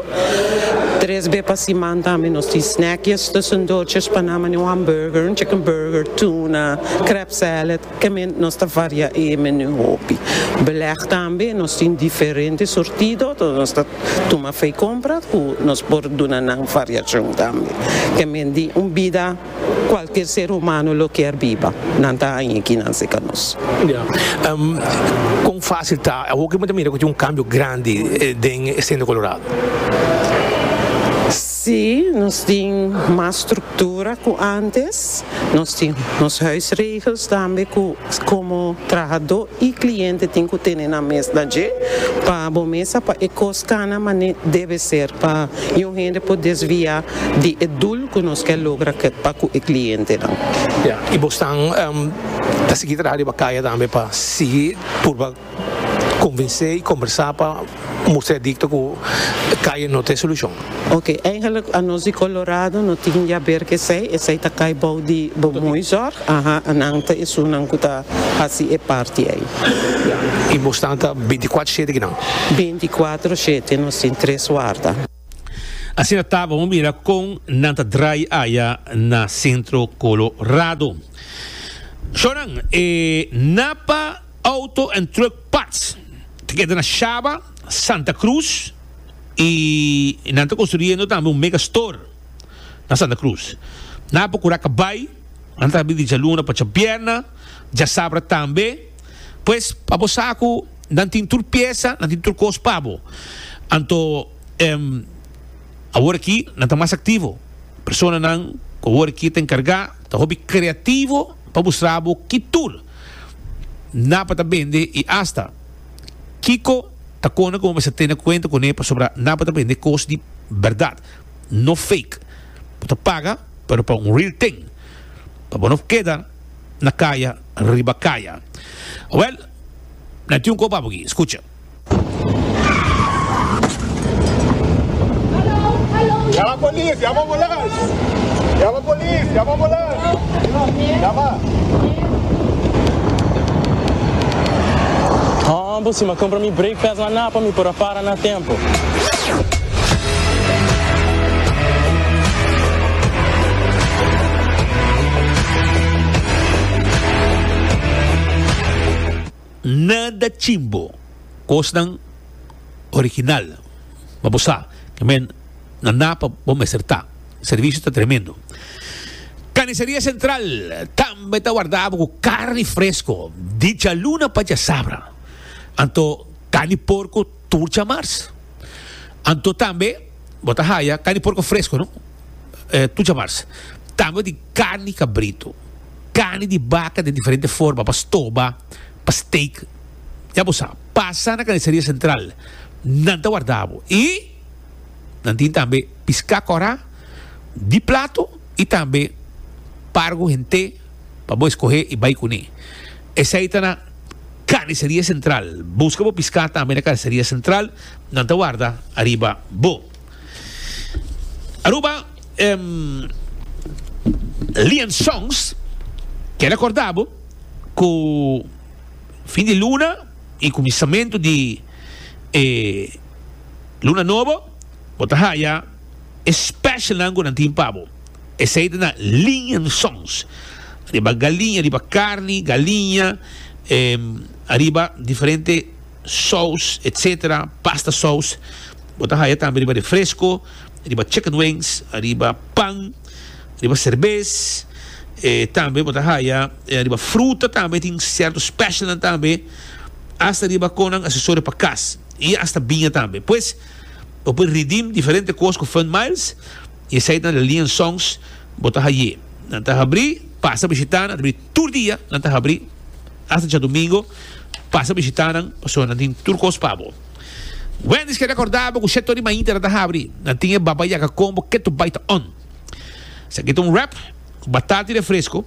Tres be pa siman tambe nos tin snèkjes tussen dòrtjes pa nan manera un hambùrger, un chicken burger, tuna, krèp sèlèd, kèmen nos ta variá e menú hopi. Belèg tambe nos tin diferente surtido, so nos ta tuma fei kompra ku nos por duna nan variashon tambe. Kèmen di un bida. Cualkier ser humano lo kier biba. Nan ta haña aki nan seca nos. Ya. Con facil ta awo cu bo ta mira cu tin un cambio grandi den e Centro Colorado? Si, nos tin mas structura cu antes. Nos tin nos huisregels tambe cu como trahador y cliente tin cu tene nan mesna dje pa bo mesa pa e cos cana mane debe ser pa youn hende por desvia di e doel. Cu nos ke logra ke pa cu e clientenan? Ya, y bo stan ta sigui traha riba caya tambe pa sigui purba convinse y combersa pa mustra e dicto cu caya no ta e solucion? Ok, eigenlijk anos di Colorado no tin yaber ke esey, esey ta cay bou di bo mooi zorg, aha, nan ta esunnan cu ta haci e parti ey. Ya, y bo stan ta binticuatro shete ki nan? Binticuatro shete, nos tin tres warda. Asina ta bo mira kon nan ta drai aya na Centro Colorado. Shonan, e Napa Auto and Truck Parts ta keda na Shaba, Santa Cruz y nan ta construyendo tambe un mega store na Santa Cruz. Nan a procura cabai, nan ta habri di djaluna pacha bierna, djasabra tambe. Pues pa bo sa cu. Nan tin tur piesa, nan tin tur kos pa bo. Anto, awor aki nan ta mas aktivo. Personanan ku awor aki ta enkargá ta hopi kreativo pa mustra bo ki tur nan pa ta bende i asta kiko ta kona ku bo mester tene kuenta kuné pasobra nan pa ta bende kos di bèrdat, no fake. Bo ta paga, pero pa un real ting pa bo no keda na kaya riba kaya. Wèl. Nan tin un kos pa bo aki, skucha. Yama polis, yama ambulans. Yama polis, yama ambulans. Yama. Haa, bo si mi a compra mi brake pads, mi a napa mi por a para. Ta na tempo. Nada chimbo. Cosnan original. Ma bo sa ke men na na pa bo mester ta. Servicio ta tremendo. Carniceria Central tambe ta wardabo cu carni fresco. Dichaluna pa djasabra. Anto. Kan di porku tur djamars. Anto tambe bo ta haya kan di porku fresku no tur djamars. Tambe bo tin karni di kabritu, karni di baka den diferente forma pa stoba, pa steak. Ya bo sa, pasa na Carniceria Central, nan ta warda bo. I nan tin tambe piská kòrá di platu i tambe pargo hent'é. pa bo escohe y bay cune. Esey ta na Carniceria Central. Busca bo pisca tambe na Carniceria Central. Nan ta warda ariba bo. Aruba, Lian Songs, keda corda bo cu fin di luna y cuminsamentu di e luna nobo bo ta haya e specialnan cu nan tin pa bo. Esei ta na liñensons, riba galiña, riba carni, galiña, riba diferente sous, etc. Pasta sous. Bo ta haya tambe riba refresco, riba chicken wings, riba pan, riba cerbes. Tambe bo ta haya riba fruta tambe, tin cierto specialnan tambe, hasta riba con nan accesorio pa cas y hasta biña tambe. Pues, bo por redeem diferente cos cu Fun Miles. I esei ta liensons bo ta haye. Nan ta habri, pasa bishita nan, ta habri tur dia, nan ta habri hasta djadumingo, pasa bishita nan, pasobra nan tin tur cos pa bo. Wendy's ke recorda bo cu shèt tori mainta nan ta habri, nan tin e baba yaka combo keto bai ta on. Esaki ta un wrap cu batata i refresco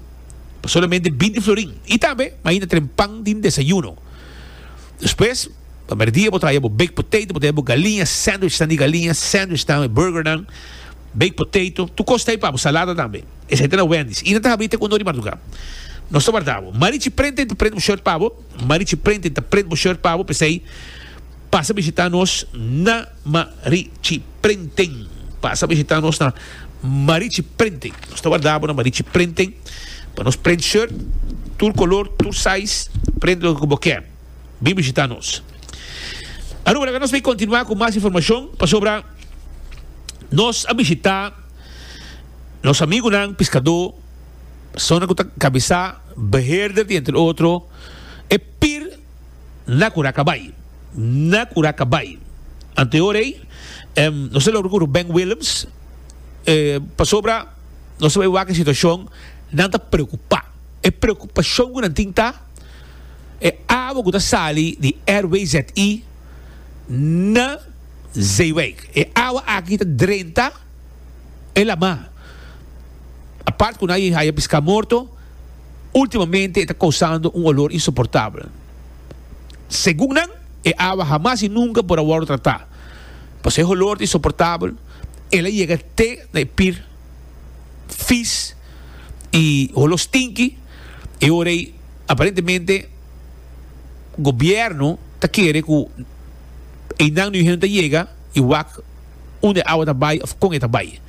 pa solamente binti florin. I tambe mainta tren pan den desayuno. Despues, pa merdia bo ta haya bo baked potato, bo ta haya bo galiña, sandwichnan di galiña, sandwichnan, e burgernan, baked potato, tur kos ta hay pabo, salada tambe. Esei ta na Wendy's. I nan ta habri te uno di marduká. Nos ta warda bo. Marichi Printing ta print bo short pabo. Marichi Printing ta print bo short pabo, p'esei pasa bishitá nos na. Ma ri chi prenten. Pasa bishita nos na Ma ri chi prenten. Nos ta warda bo na Ma ri chi prenten pa nos prent shirt tur color tur size prent loke cu bo kier. Bin bishita nos. Aruba laga nos bay continua cu mas informacion pasobra nos a bishita nos amigunan piscado personanan cu ta cabeza beheerder di entre otro e pir Na cura ca bay. Na cura ca bay. Ante ora ey, no sa logra curu Ben Willems, pasobra no sa bay wak e situacion, nan ta preocupa. E preocupacion cu nan tin ta, e awa cu ta sali di RWZI na Zeewijk. E awa aki ta drenta. El ama, apart cu nan a haya pisca morto, ultimamente e ta causando un olor insoportabel. Segun nan, e awa hamas y nunca por a wordo trata. Pasobra e holor ta insoportabel, el a yega te na e pir vis y holo stinky. E ora ey, aparentemente, gobierno ta kere cu eynan nu hende ta yega y wak. unda e awa ta bai òf kon e ta bai.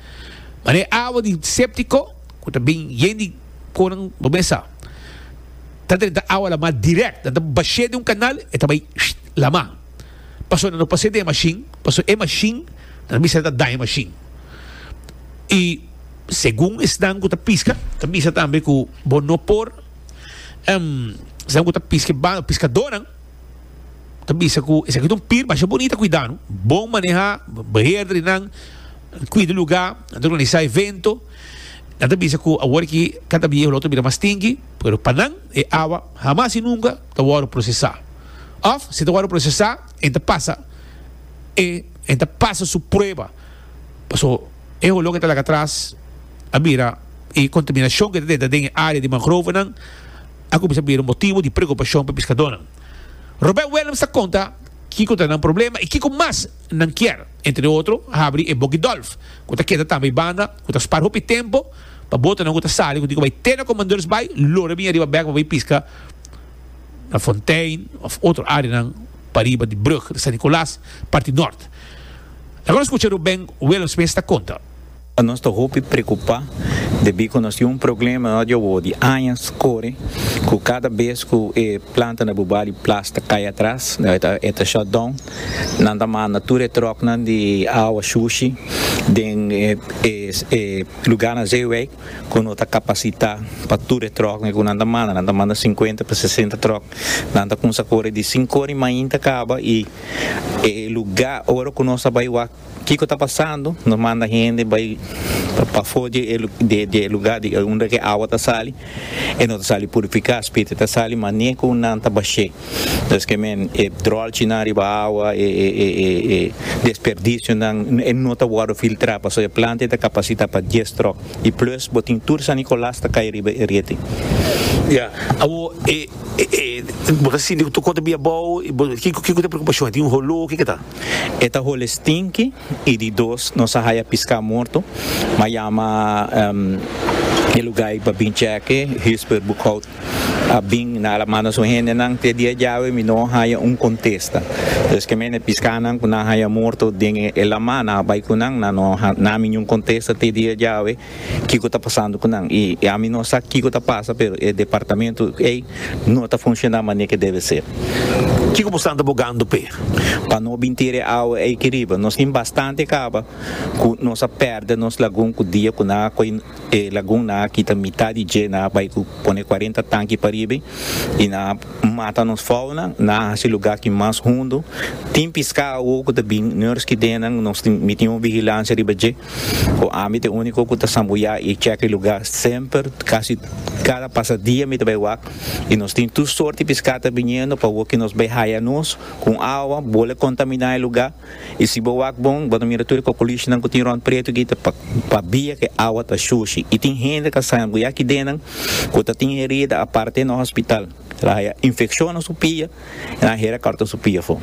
Mara e awa di séptiko ku ta bin yen di konan bo mes sa ta drenta awa lamá dirèkt. Nan ta bash'é den un kanal, e ta bai lamá. Pasobra nan no pas'é den e mashin, pasobra e mashin nan ta bisa nan ta daña e mashin. I segun esnan ku ta piska ta bisa tambe ku bo no por esnan ku ta piska e bal, piskadónan. ta bisa cu esaki ta un pir masha bunita cuidanu, bon maneha, beheerder y nan cuida e lugar, nan ta organisa evento, nan ta bisa cu awor aki ka ta viehu lo ta bira mas stinky, pero pa nan e awa hamas y nunca ta wordo procesa of si ta wordo procesa en ta pasa e en ta pasa su prueba, paso e holo ke ta laga atras a bira e contaminacion ke ta den ta den e area di mangrovenan. a kuminsá a bira un motibu di preokupashon pa piskadónan. Robert Willems ta konta kiko ta nan problema i kiko mas nan kier, entre otro, habri e boki dòlf, ku ta keda tambe banda ku ta spar hopi tempu pa botonan ku ta sali ku tin ku bai te na Commandeurs Bay lo riba biña riba bèk pa bai piska na Fontein òf otro áreanan pa riba di brug di San Nicolas, parti nòrt. Laga nos skucha Ruben Willems mes ta konta. Nos ta hopi preocupa debí cu nos tin un problema na nos djobou di añas core cu cada bes cu e planta na Bubá di Plas ta cay atras, e ta shut down, nan ta manda tur e trucknan di awa shushi den e lugarnan zeewei cu no ta capacita pa tur e trucknan cu nan ta manda, nan ta manda cincuenta pa sesenta truck, nan ta cuminsa core di cinco ora di mainta caba y e lugar ora cu nos ta bay wak Kiko ta pasando? Nos manda hende bai pafó di e lugá di unda ku e awa ta sali. E no ta sali purifiká, spiritu ta sali, ma ni'e ku nan ta bash'é. Por esun men e dròlchinan riba awa, e desperdisionan, e no ta wòrdu filtrá. Pasobra e planta ei ta kapasitá pa dies tròk. I plis, bo tin tur sanikolás ta kai riba e rete. Ya. Awor, e, e, bo ta sinti ku tur kos ta bai abou, i bo, kiko, kiko ku e preokupashon? E tin un holó? Kiko ta? E ta hole stinki y di dos nos a haya pisca morto, ma yama e lugar y pa bin cheke, Huisper Boekhoudt a bin na la manda su hendenan te dia djawe mi no haya un contesta, dus ke mene piscanan cu nan haya morto den e lama nan a bay cu nan, nan no ha nami niun contesta te dia djawe. Kiko ta pasando ku nan i ami no sa kiko ta pasa pero e departamento ei no ta funshoná manera ke debe ser. Kiko bo stanta bogando p'e. Pa no bin tira e awa ei aki riba. Nos tin bastante kaba ku nos a pèrdè nos lagun ku dia ku nan a koi e lagun nan a kita mitat di dje nan a bai ku pone kuarenta tanki pariba i nan a mata nos fauna nan a hasi lugá aki mas hundu tin piská awor ku ta bin nòrski den nan nos tin mi tin un vigilansia riba dje Ku ami t'e úniko ku ta sambuyá i chèka e lugá semper. Kasi kada pasadia mi ta bai wak i nos tin tur sort di piskata biniendo pa wok i nos bai haya nos ku un awa bol a kontaminá e lugá. I si bo wak bon, bo ta mira tur e kokolishinan ku tin rònt pretu aki ta pabia ku e awa ta shushi i tin hende ta sambuyá aki dennan ku ta tin herida aparte e nan hospital el a haya infekshon na su pia i nan a hera kòrta su pia afó.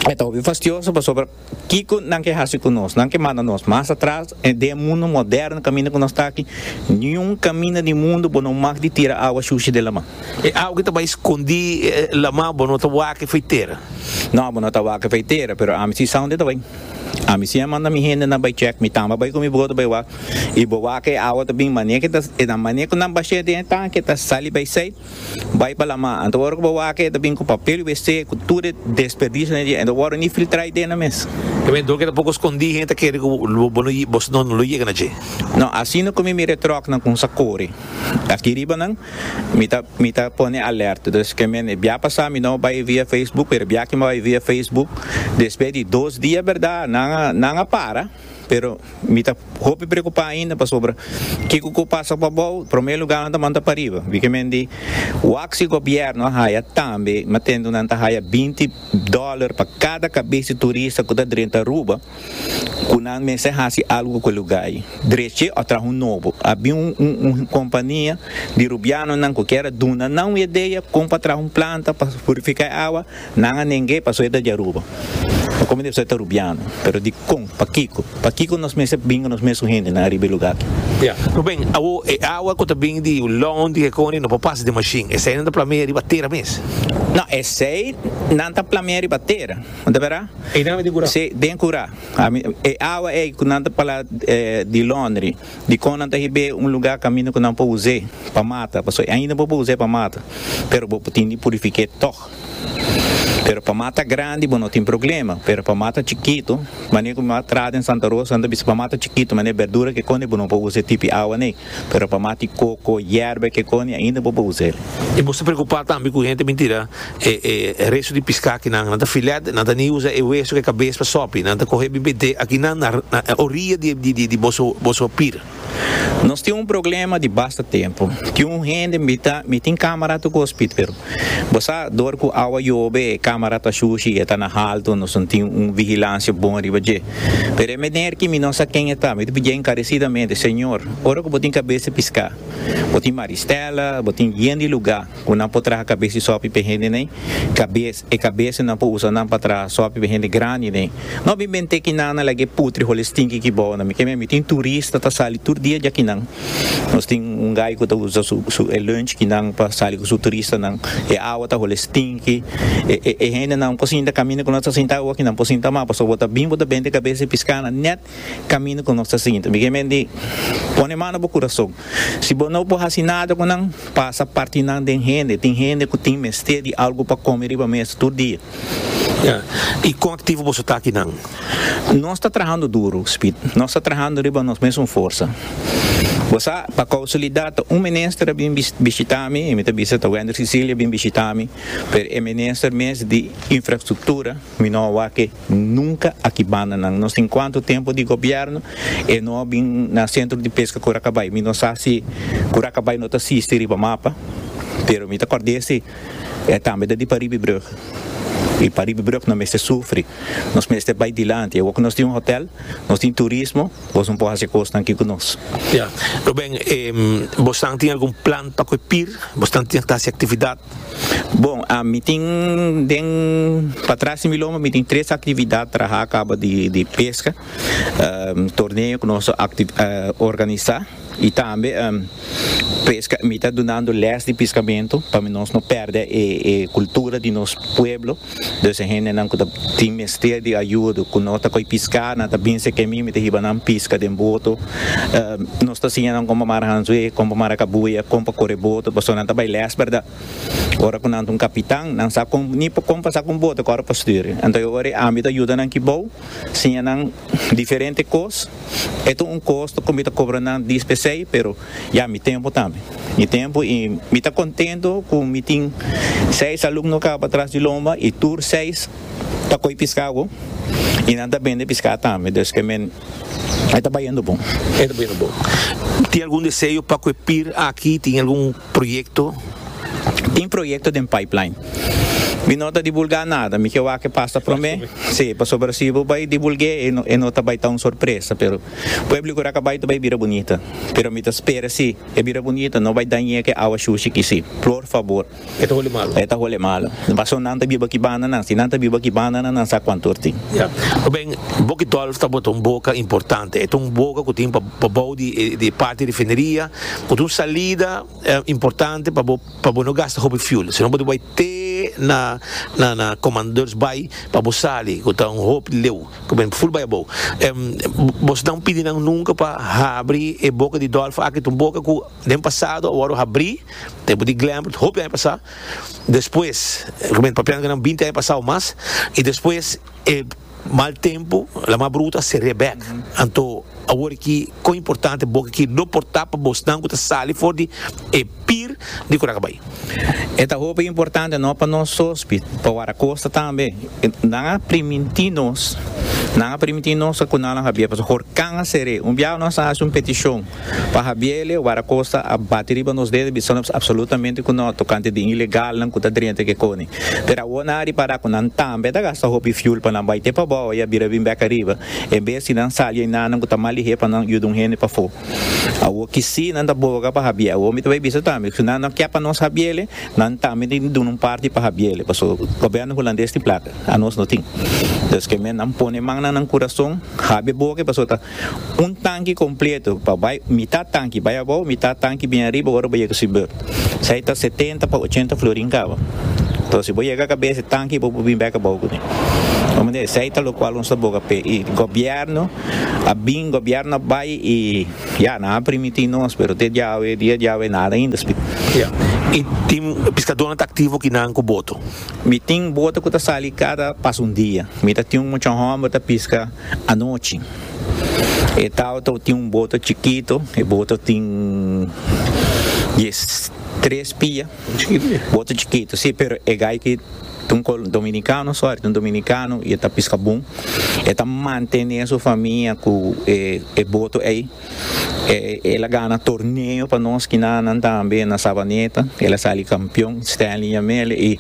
E ta hopi fastioso pasobra. Kiko nan ke hasi ku nos? Nan ke manda nos mas atras den e mundu moderno kaminda ku nos ta aki? Niun kaminda di mundu bo no mag di tira awa shushi den lama. E awa ke ta bai skondí lama bo no ta wak efei tera. No, bo no ta wak efei tera, pero ami si sa unda e ta bai. Ami si a manda mi hendenan bai chèk, mi tamba bai ku mi brodo bai wak, i bo wak e awa ta bin mane ke ta, e nan mane ku nan bashe den e tanki e ta sali bai esei. Bai pa lama. Anto ora cu bo wak e ta bin cu papel y wc cu tur e desperdiciones dje. Anto worde ni filtra y dena mes. E mentor ke ta poko skondí hende ta kere ku bo no bo no no lo yega na dje. No, asina ku mi mira e tròknan kon sa kore aki riba nan mi ta mi ta pone alerta. Dus ke men e bia pasá mi no bai via Facebook pero e bia aki mi bai via Facebook despues di dos dia berdad nan a nan a para. pero mi ta hopi preocupa ainda pasobra kico cu pasa pa bao prome lugar nan ta manda pariba bikimendi wak si gobierno a haya tambe mi a tendo nan ta haya binti dollar pa cada cabes di turista cu ta drenta Aruba cu nan mester haci algo cu e lugar ayi dreche o traha un nobo a bin un compania di rubiano nan cu kier a duna nan un idea con pa traha un planta pa purifica e awa Nan a neng'é pasobra e ta djaruba. Pa kome debe ser ta rubiano? Pero dikon? Pakiko? Pakiko nos mester binga nos mesun hendenan ariba e lugá aki? Ya. Ruben, Awo, e awa ku ta bini di Ulon, di Hekoni, no por pasa den mashin. Esei nan ta plameá riba tera mes. No, esei nan ta plameá riba tera. Bo ta bira? Ei nan ami den kurá. Sí, den kurá. Ami, e awa ei ku nan ta parla di londri, dikon nan ta hib'é un lugá kaminda ku nan por us'é pa mata? Pasobra ainda nan por us'é pa mata, pero bo por tin di purifik'é tòg. tok. Pero pa ma ta grandi bo no tin problema, pero pa ma ta chikitu, mane ku mi a tra den Santa Rosa nan ta bisa pa ma ta chikitu mane berdura kekoni bo no por usa e tipi awa nei, pero pa ma tin koko, yerba e kekoni ainda bo por usa el. I boso ta preocupa tambe ku hende mintira e e resto di pisca kinan nan ta filet, nan ta ni usa e hueso ku e cabes pa sopi, nan ta coge bibedé akinan na na orilla di di di boso boso pir. Nos tin un problema di basta tempu. Tin un hende mi ta mi tin camera tu gospit pero bo sa dor cu awa yobe e camera ta shushi y e ta na halto nos no tin un vigilancia bon riba dje. Pero e meneer ki mi no sa ken e ta mi ta pidie encarecidamente Señor ora cu bo tin cabes te pisca bo tin Maristella bo tin bien di lugar Ku nan por traha kabes di sopi p'e hendenan, kabes, e kabes nan por usa nan pa traha sopi p'e hende grandinen. No bin bent'é ki nan a lag'é putri holi stinki ki bou nan. Mi ke meme tin turista ta sali tur dia dja ki nan. Nos tin un gai ku ta usa su su e lunch ki nan pa sali ku su turista nan. E awa ta holi stinki. E e e hende nan por sinta kaminda ku nos ta sinta awa ki nan por sinta mas pasobra bo ta bin bo ta bent'é kabes di piská nan nèt camino cu nos ta sigui. Enton, dije men di, Pone mano bo curason. Si bo no por haci nada cu nan, pasa parti nan den hende. Tin hende cu tin mester di algo pa come riba mesa tur dia. Ya. Y con activo boso ta aki nan? Nos ta trahando duro, Speed. Nos ta trahando riba nos mesun forsa. Bo sa, pa causalidad ta un minister a bin bishita mi, e mi ta bisa ta Wender Cecilia bin bishita mi, pero e minister mes di Infrastructura, Mi no a wake nunka aki banda nan. No sin cuanto tempo di gobierno e no a bin na centro di pesca Curacabay. Mi no sa si Curacabay no ta sisti riba mapa, pero mi ta cord'e si e tambe ta di pa Riebebrug. Y pa Riebebrug no mester sufri. Nos mester bay dilanti. Awor cu nos tin un hotel, nos tin turismo, boso no por haci e cosnan aki cu nos. Ya. Ruben, bosan tin algun plan pa cu e pir? Bosan tin ta haci actividad Bon, a mi tin den patras di mi lomba mi tin tres actividad traha caba di di pesca torneo cu nos ta organisa y tambe pesca mi ta dunando les di piscamento pa nos no perde e cultura di nos pueblo. Dus e hendenan ku ta tin mester di ayudo, ku no ta koi piská, nan ta binse ke mi, mi ta hiba nan piska den boto. Nos ta siña nan kon pa mara hanzué, kon pa mara kabuya, kon pa kore boto, pasobra nan ta bai lès, bèrdat? Ora ku nan ta un kapitan, nan sa kon, ni pa kon pa sa ku un boto kòre pa stür. Anto e ora e ami ta yuda nan kibou, siña nan diferente kos. E ta un kosto ku mi ta kobra nan dis p'esei, pero Ya, mi tempu tambe. Mi tempu i mi ta contento cu mi tin seis alumno caba tras di lomba i tur seis ta coi pisca awo i nan ta bende pisca tambe, dus que men e ta bayendo bon. E ta bayendo bon. Tin algun deseo pa cu e pir aki? Tin algun proyecto? Tin proyecto den pipeline. Mi no ta dibulga nada, mi ke wak e pasta prome, si, pasobra si bo bay dibulge e no ta bay ta un sorpresa, pero. Pueblo cu raca bay ta bay bira bunita. Pero mi ta spera si e bira bunita no bay dañe ke awa shushi ki si. Plor fabor. E ta hole malo. E ta hole malo. Paso nan ta biba ki banda nan. Si nan ta biba ki banda nan nan sa cuanto er tin. Ya. Oben, Boki Dolf ta bota un boca importante. E ta un boca cu tin pa bou di e parti refineria cu ta un salida. E importante pa bo pa bo no gasta hopi fuel sino bo ta bai te na na na Commandeurs Bay pa bo sali cu ta un hopi leu cu bene full bai abou bos nan pidi nan nunca pa habri e boca di dolpha aki ta un boca cu den pasado awor habri tempo di Glenbrood hopi aña pasa despues cu bene papiando cu nan binti aña pasa o mas y despues e Mal tempu, la mar bruto a seria bek. Anto, awor aki, kon importante boka ki lo por ta pa bosnan ku ta sali for di e pir di Curacabai? E ta hopi importante no pa nos sospi, pa Waracosta tambe. Nan a primintí nos, nan a primintí nos ku nan lo habier, pasobra horkan a ser'é. Un biaha nos a hasi un petishon. Pa Habiele, Wara Costa a bati riba nos dedo bisanos absolutamente cu no tocante di ilegalnan cu ta drenta ke coni. Pero awor nan a ripara cu nan tambe ta gasta hopi fuel pa nan bai te pabao y a bira bin bek ariba, en bes di nan sali enanan cu ta mal di hep pa nan yuda un hende pafo. Awor ki si nan ta boga pa Habiele. Awor mi ta bai bisa tambe, si nan no ke pa nos Habiele, nan tambe tin di duna un parti pa Habiele, paso Gobierno Hulandes tin placa, anos no tin. Entonces, ke men nan pone mannan nan curason, Habie boga, paso ta. Un tanki kompleto pa bai mitat tanki bai abou mitat tanki bin ariba ora bo yega su beurt. Esei ta setenta pa ochenta florin kaba. Tos si bo yega kabes e tanki bo por bin bek abou kuné. Komo esei ta lokual nos ta boga p'e i gobièrnu a bin gobièrnu a bai i ya nan a primiti nos pero te diawe dia diawe nada ainda spik. I tin piskadónan ta aktivo ki nan ku boto? Mi tin boto ku ta sali kada pas un dia. Mi ta tin un mucha hòmber ta piska. Anochi e tautou tin un boto chikito, e boto tin dies tres pia, boto chikito si pero e gaiki ta un col dominicano sorry ta un dominicano y e ta pisca bon, e ta mantene su famia cu e boto ey. El a gana torneo pa nos kinanan tambe na Savaneta, el a sali kampion, Stanley Yamele i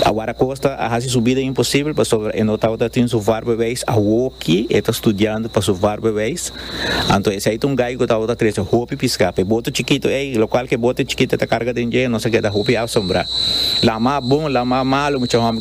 Awar Acosta a hasi su bida imposibel pasobra e no tabata tin su varbewijs, awoki e ta studiando pa su varbewijs, anto esei ta un gai ku tabata trese hopi piska pa e bote chikito ei, lokual ku e bote chikito ta karga den dje, nos a keda hopi asombrá. Laman bon, laman malu mucha hòmber.